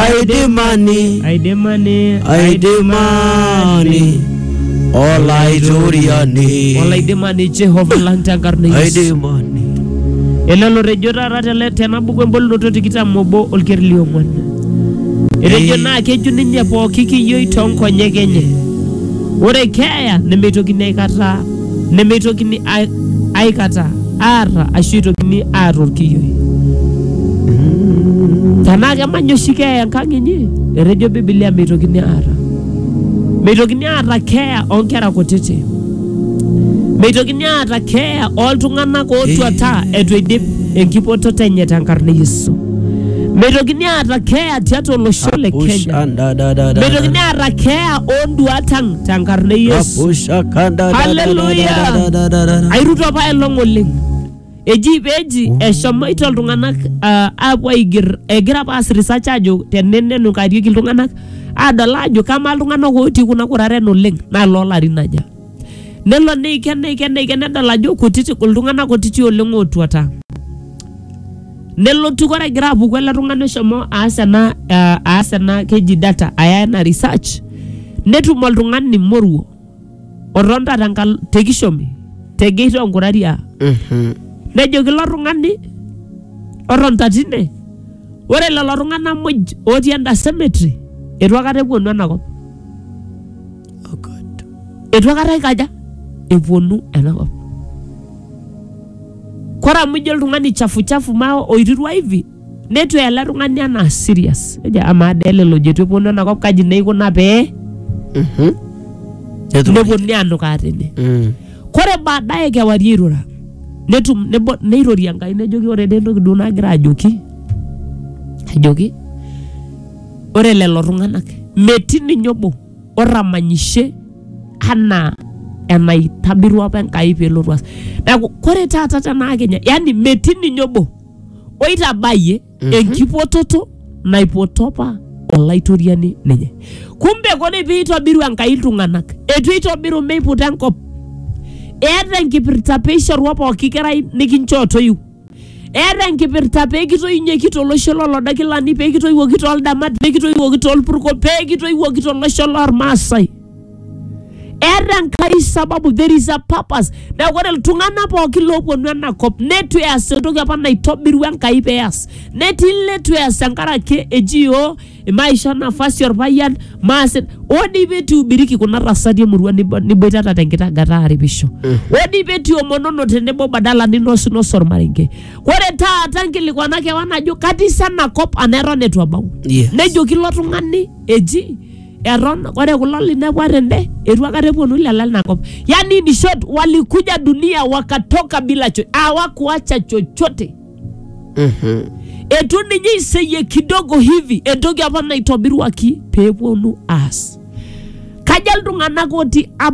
aidimani aidimani aidimani olaitoriani olaidimani jehova lang tenkarna e yesu aidimani ele lotejo taata tele- tena buku embolunoto tikitam obo olker liong'uan etejo Ei. naa keju ninye pooki kiyioi toonkonyek enye ore keeya nemeitokini aikata nemeitokini ai- aikata aarra ashu eitokini aar olkiyioi tenaa kemany oshi keeya enkang inyi etejo bibilia meitokini aarra meitokini aata keeya oonkera kutiti meitokini aata keeya ooltung'anak ootuata etu eidip enkipototo enye tenkarna e yesu meitokini aata keeya tiatua olosho le Push kenya and da da da da. meitokini aata keeya oonduat ang tenkarna e Yesu. Rapusha kanda. Hallelujah. Airuto apaelong oleng. Eji peji eshomoito iltung'anak ah, aapuo aiger egira apa aas research ajo tenenenukarieki iltung'anak adol ajo kamaa iltung'anak ootii kuna kuraren oleng naa loolarin aja. Nelo neiken neiken neiken nedol ajo kutiti iltung'anak kutiti oleng ootuata. nelotu kore egira apuku ele tung'ani oshomo aas ena ah, aas ena keji data aya ena research netum oltung'ani moruo otonta tenkal te kishomi te gate onkuraria Mhm. nejoki ilo tung'ani otonta tine ore lelo tung'anak muj otii enda cemetery etu akata epuonu enakop Oh God. eitu aikata ikaja eponu enakop kore amu ijo oltung'ani chafuchafu maa oirirua hivi netu eya ele tung'ani anaa serious ejo amaa dee lelo jetu eponu enakop kaji neikuna pee Mhm. Netum. neponuni anukaa tene Mm. kore baadaye kewarie airura netum nebo- neirorie enkai nejoki ore dee entoki duo nagira ajoki ajoki ore lelo tung'anak metii ninye obo otamanyishe anaa enaitobirua apa Enkai peelotu aas. Neaku kore taata tenaa kenya, yaani metii ninye obo oitabayie enkipototo naipoto apa Olaitoriani ninye. Kumbe kore peitobiru Enkai iltung'anak, eitu eitobiru meiputa enkop. Eeta enkipirta peishorua pooki kerai nikinchoo toiu. eeta enkipirta pee kitoiunyieki tolosho lolodakilani pee kitoiwuoki toldamat pee kitoiwuoki tolpurko pee kitoiwuoki tolosho lormaasai eeta enkai sababu there is a purpose neeku ore iltung'anak pookin looponu enakop netu eas entoki apa naitobirua enkai peas netii letu eas tenkaraki eji iyiook maisho nafasi orpayian maas oo dii pee etuubiriki kuna tasati emurua nibo- niboitata tenkitagata aaripisho oo dii pee etiomonono tenebo badala ninosinoso ormarenge ore taata nkilikuana kewan ajo katii sa ena kop anaa eton eitu abau Yes. nejoki ilo tung'ani eji eton ore kulo linepua tende etu akata eponu lelo lina kop yani in short walikuja dunia wakatoka bila cho awakuacha chochote Mhm. etu ninye iseyie kidogo hivi entoki apa naitobiruaki peeponu aas kaja iltung'anak otii ab